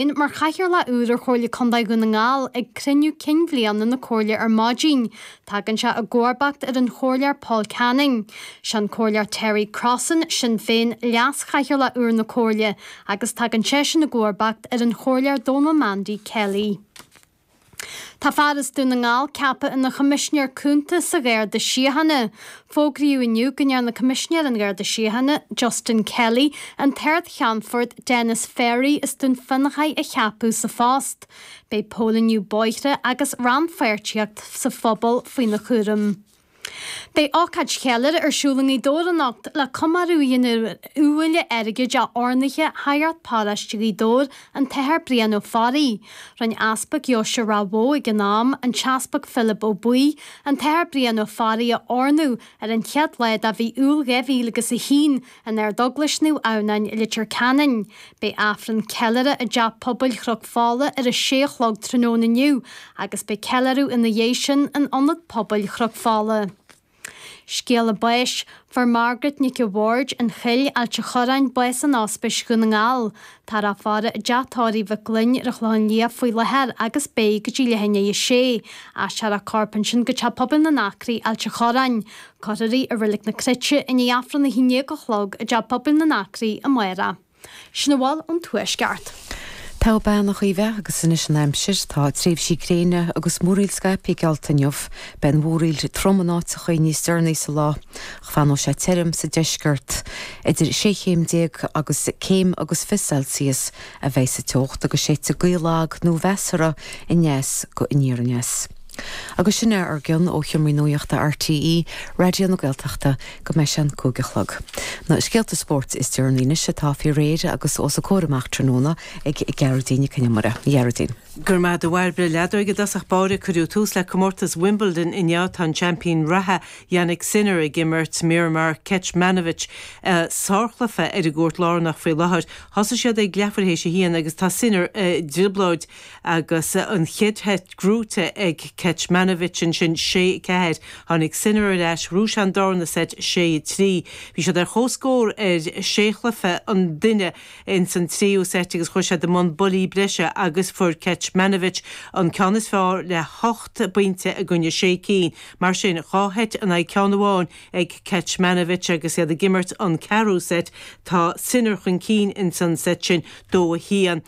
inn mar chathaoirleach úr ar Chomhairle Contae Dhún na nGall ag cruinniú cinn bhliana na Comhairle ar maidin. Tagann sé i gcomharbacht ar an Chomhairleoir Paul Canning. Sé an Comhairleoir Terry Crossan, Sinn Féin, leas-chathaoirleach úr na Comhairle agus tagann seisean i gcomharbacht ar an Chomhairleoir Donal Mandy Kelly. Tá fear as Dún na nGall ceaptha ina Choimisinéir Cúnta sa Gharda Síochána. Fógraíodh inniu go ndearna Coimisinéir an Gharda Síochána, Justin Kelly, an tArd-Cheannfort Denis Ferry as Dún Fionnachaidh a cheapadh sa phost. Beidh póilíniú bóithre agus rannpháirtíocht sa phobal faoina chúram. Beidh ócáid cheiliúrtha ar siúl i nGaoth Dobhair anocht le comóradh a dhéanamh ar iubhaile airgid oirnithe Shagart Paróiste Ghaoth Dobhair, an tAthair Brian Ó Fearraigh. Rinn Easpag Dheoise Ráth Bhoth ag an am, an tEaspag Philib Ó Buí, an tAthair Brian Ó Fearraigh a oirniú ar an chéad lá de mhí Iúil 2001, in Ardeaglais Naomh Adhamhnáin i Leitir Ceanainn. Beidh Aifreann Ceiliúrtha i dTeach Pobail Chnoc Fola ar a sé a chlog tráthnóna inniu agus beidh ceiliúradh ina dhiaidh sin in Ionad Pobail Chnoc Fola. Scéala Báis, Fuair Margaret Nic a' Bhaird, an Choill, Ailt a' Chorráin, bás in Ospís Dhún na nGall. Tá a faire i dTeach Tórraimh Mhic Gloinn ar an Chlochán Liath faoi láthair agus beidh, go dtí leath i ndiaidh 6. Aistreofar a corp ansin go Teach Pobail na nAcraí, Ailt a' Chorráin. Cuirfear í i Reilig na Cruite i ndiaidh Aifreann a haon dhéag a chlog i dTeach Pobail na nAcraí amárach Sin a bhfuil ón Tuaisceart. Go raibh maith agat a Chaoimhe agus anois an aimsir, tá tréimhsí gréine agus múraíl scaipthe geallta inniu. Beidh an mhúraíl trom in áiteachaí níos deireanaí sa lá, ach fanóidh sé tirim sa deisceart. Idir sé chéim déag agus céim agus fiche Celsius a bheidh sa teocht agus séidfidh gaoth lag nó measartha aneas go aniar aneas. Agus sin é ár gcion ó sheomraí nuaíochta RTÉ Raidió na Gaeltachta go mbeidh sé a cúig a chlog. Na scéalta spóirt is deireanaí anois atá faoi réir agus os a gcomhair amach tráthnóna ag Gearóidín Nic Con Iomaire. Ghearóidín. Go raibh maith agat a Mháire, leadóg i dtosach báire, cuireadh tús le comórtas Wimbledon inniu, tá an seaimpín reatha Jannik Sinner ag imirt Miomir Kecmanovic sárchluiche ar an gcúirt lárnach faoi láthair thosaigh siad ag leathuair théis a haon agus tá Sinner i dtrioblóid agus an chéad seit buaite ag Kecmanovic, sin sé, ceathair, tháinig Sinner ar ais, bhuaigh sé an darna seit sé, trí, bhí siad ar chomhscór ar sé chluiche an duine ins an tríú seit agus chuaigh siad i mbun buillí breise agus fuair Kecmanovic an ceann is fearr le hocht bpointe i gcoinne sé cinn. Mar sin, dhá sheit in aghaidh ceann amháin ag Kecmanovic agus iad ag imirt an ceathrú seit, tá Sinner chun cinn ins an seit sin, dó a haon.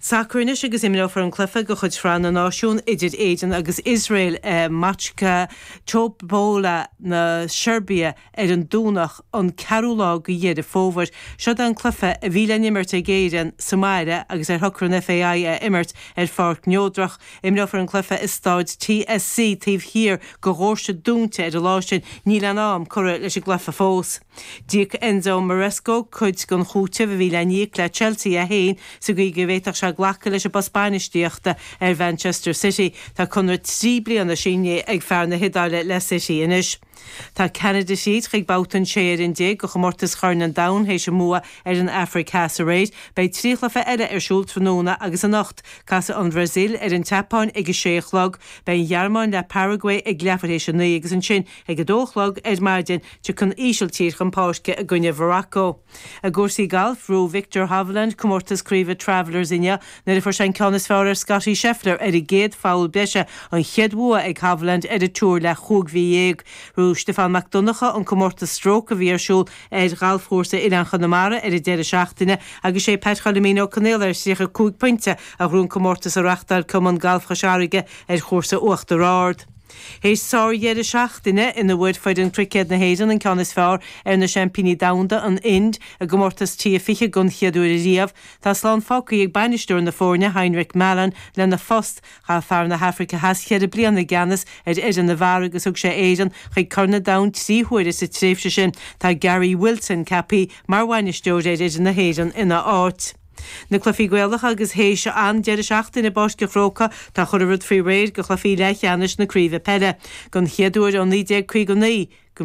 Sacar anois agus imreofar an cluiche de chuid Shraith na Náisiún idir Éirinn agus Iosrael i mBačka Topola na Seirbia ar an Domhnach an 4ú lá de Dheireadh Fómhair. Seod é an cluiche a bhí le n-imirt ag Éirinn sa mbaile agus ar shocraigh an FAI a imirt ar pháirc neodrach. Imreofar an cluiche i Stáid TSC taobh thiar de dhóirse dúnta ar an lá sin. Níl aon am curtha leis an gcluiche fós. D'íoc Enzo Maresca cuid den chúiteamh a bhí le n-íoc le Chelsea é féin sa gcaoi go bhféadfadh sé glacadh leis an bpost bainistíochta ar Mhanchester City. Tá conradh trí bliana sínithe ag fear na hIodáile le City anois. Tá Ceanada thríd chuig babhta an 16 fhoireann de chomórtas Chorn an Domhain théis a mbua ar an Afraic Theas aréir. Beidh trí chluiche eile ar siúl tráthnóna agus anocht. Casfaidh an Bhrasaíl ar an tSeapáin ag a sé a chlog. Beidh an Ghearmáin le Paraguay ag leathuair théis a naoi agus ansin, Ag a dó a chlog ar maidin, tiocfaidh an Ísiltír chun páirce i gcoinne Mharacó. I gcúrsaí gailf, ghnóthaigh Viktor Hovland comórtas craoibhe Travellers inniu nuair a fuair sé an ceann is fearr ar Scottie Scheffler ar an gcéad pholl breise, an chéad bhua ag Hovland ar an Tour le chúig mhí dhéag. Ghnóthaigh Stiofán Mac Donncha an comórtas Stroke a bhí ar siúl ar ghalfchúrsa Oileáin Chonamara ar an deireadh seachtaine agus sé Pat Choilmín Ó Conaola ar thríocha cúig pointe a ghnóthaigh an comórtas a reachtáil Cumann Galf Chois Fharraige ar chúrsa Uachtar Ard. Théis sár-dheireadh seachtaine ina bhfuair foireann cruicéad na hÉireann an ceann is fearr ar na seaimpíní domhanda, an Ind, i gcomórtas T20 don chéad uair ariamh, tá slán fágthaí ag bainisteoir na foirne, Heinrich Malan, lena phost. Chaith fear na hAfraice Theas cheithre bliana i gceannas ar fhoireann na bhfear agus thug sé Éirinn chuig Corn an Domhain trí huaire sa tréimhse sin. Tá Gary Wilson ceapthaí mar bhainisteoir ar fhoireann na hÉireann ina áit. Na cluichí Gaelacha agus théis an deireadh seachtaine i bPáirc an Chrócaigh tá chuile rud faoi réir do chluichí leathcheannais na craoibhe peile, don chéad uair ó 1959, go